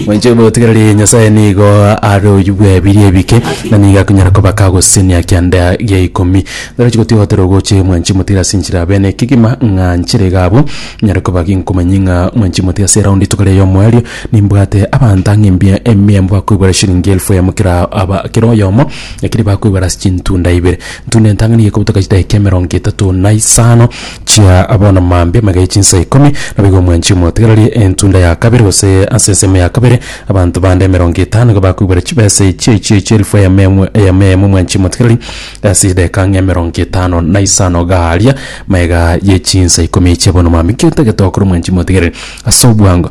Mwenche botigereri Nyasaye nigo are oyio bw'ebiria ebike, na nigo akonyara koba kagosesenia kianda gia ikomi. Naro chigotigotera ogoche mwenchi motiga ase enchera abe n'ekegima ng'a nchera iga abwo. Nyare koba nkomanyie ng'a mwenchi motiga ase eraundi rituko ria omoerio nimbwate abanto ang'e mbia emia mbakoigwera eshiringi elfu eyemo kera aba kera oyomo, ekeri bakoigwera ase chintunda ibere. Ntunda entang'ani gekobutoka chidakika emerongo etato na isano. Chia bono mambia maiga ye chinsa ikomi, na boigo omwanchi omotigererie entunda ya kabere, gose ase ensemo ya kabere, abanto bande emerongo etano nigo bakoibwera chibesa echi, echi echi elifu eyemo eyemo eyemo eyemo omwanchi omotigererie, ase erideka ng'a emerongo etano na isano gaaria maiga ye chinsa ikomi chia bono mambia. Inki otagete gokora omwanchi omotigererie ase obwango?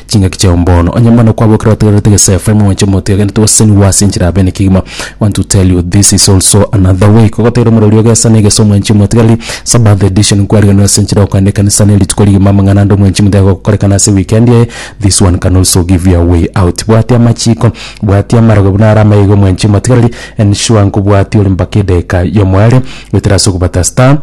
chingaki chiao mbono. Onye mana kwabokire otegererete gese Efraimu mwenche omotwe agende togosesenigwa ase enchera ya bene kegima. Want to tell you this is also another way kogotegerera omorori o gesa ne gese omwenchi omotigareri. Sabbath edition kwariganirwe ase enchera okoenda ekanisa ne rituko rigima amang'ana ande omwenchi omotigareri gokorekana ase weekend eye. This one can also give you a way out. Bwatia amachiko, bwatia amarogo buna are amaiga omwenchi omotigareri. Ensure nkobwatia ore mpaka edageka yomoerio goetera ase okobata star.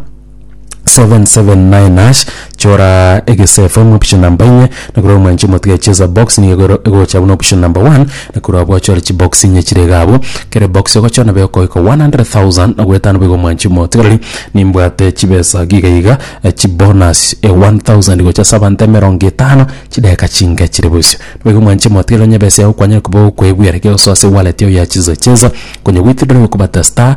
779#, chora egese FM option number inye na korwa omwanche omotiga echeza box nigo ero- egocha buna option number 1 na korwa abwo ochore chibox inye chire iga abwo kere box ogochora nabo egokogoika 100,000 na goetano boigo omwanchi omotiga rirorio nimbwate chibesa giga iga eh, chibonus eh, 1000 gocha ase abanto emerongo etano chidageka chinke chire bosio boigo omwanchi omotiga rirorio onye ebesa yago kwanyare koba okoebwera ekegosoa ase ewallet yao ya cheza cheza konya goetera okobata star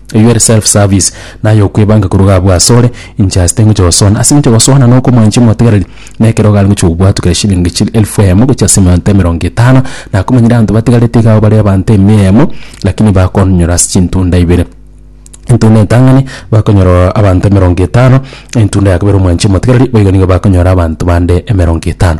Eyio ere self-service, na ay'okwebanga koruga abwo asore, inche ase tingocha gosoana. Ase engencho gosoana na okomwancha omotegereri, na ekero iga are gochia gobwatwa kera shillingi chire elfu eyemo gochia ase emeonto emerongo etano, na akomanyire abanto batigarete iga abwo bare abanto emia eyemo, lakini bakonyora ase chintunda ibere. Entunda entang'ani bakonyora ororo abanto emerongo etano, na entunda ya kabere omwancha omotegereri, boigo nigo bakonyora abanto bande emerongo etano.